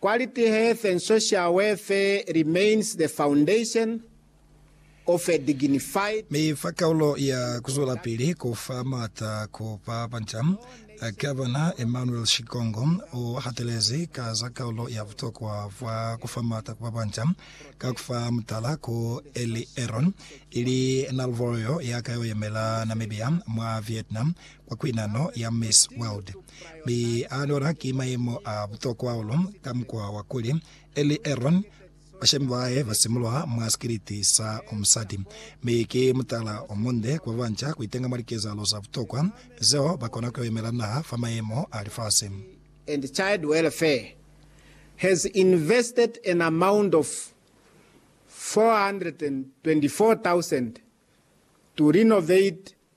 Quality health and social welfare remains the foundation of a dignified. Mi fa kaulo ya kuzwelapili ku fa maata ku ba banca, Gavana Emmanuel Shigongo u hatelezi ka za kaulo ya butokwa bwa ku fa maata ku ba banca, ka ku fa mutala ku Elly Aron, ili Nal'Vorio ya ka yo yemela Namibia mwa Vietnam, kwa kwinano ya Miss World, mi a anuwela ki mayemo a butokwa hahulu ka mukwa wa kuli Ellie Aaron, bashemi ba hae ba simulwa mwa sikiliti sa musati, mi ki mutala o munde ku ba banca ku itenga mwa likezahalo za butokwa zeo ba kona ku yo imela naha fa mayemo a lifasi. and Child Welfare has invested an amount of 424,000 to renovate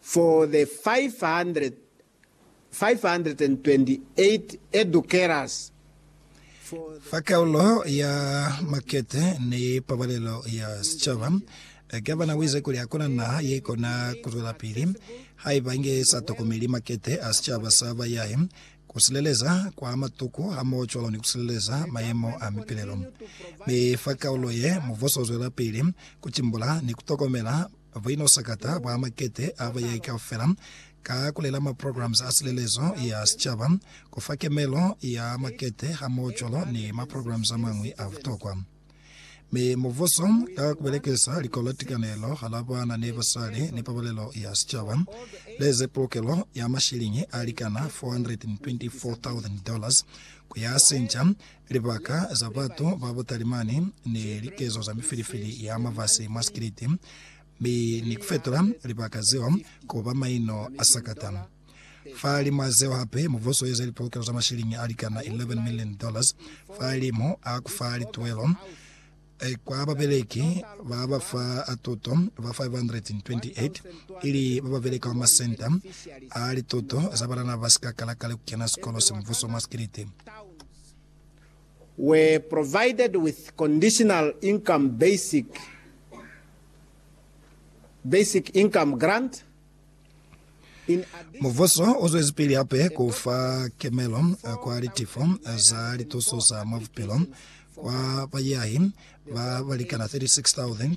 for the 528 educators for the. Fa kaulo ya makete ni pabalelo ya sicaba, Gavana uize kuli hakuna naha yeikona kuzwelapili haiba inge sa tokomeli makete a sicaba sa bayahi, kusileleza kwa matuku hamoho cwalo ni kusileleza mayemo a mipilelo. Mi fa kaulo ye, mubuso uzwelapili kutimbula ni kutokomela Buino sakata bwa makete a bayai kaufela ka kulela ma programs a silelezo ya sicaba, kufa kemelo ya makete hamoho cwalo ni ma programs amañwi a butokwa. Mi mubuso, ka kubelekisa likolo tikanelo hala bana ni basali ni pabalelo ya sicaba, leze pulukelo ya mashiliñi alikana 424,000 dollars kuyasinca Libaka za batu ba butalimani ni likezo za mifilifili ya mafasi mwa sikiliti, mi ni kufetola libaka zeo kuba maino a sakata. Fahalimw'a zeo hape, mubuso ueze lipolokelo za mashilingi alikana 11 million dollars fahalimu a kufa lituwelo Kwa babeleki ba ba fa a tuto ba 528, ili ba ba beleka mwa masenta a lituto za banana ba si ka kala kale ku kena sikolo se mubuso mwa sikiliti, were provided with conditional income basic basic income grant Mubuso u zwezipili hape ku fa kemelo kwa litifo za lituso za mwa bupilo kwa bayahi ba ba likana 36,800.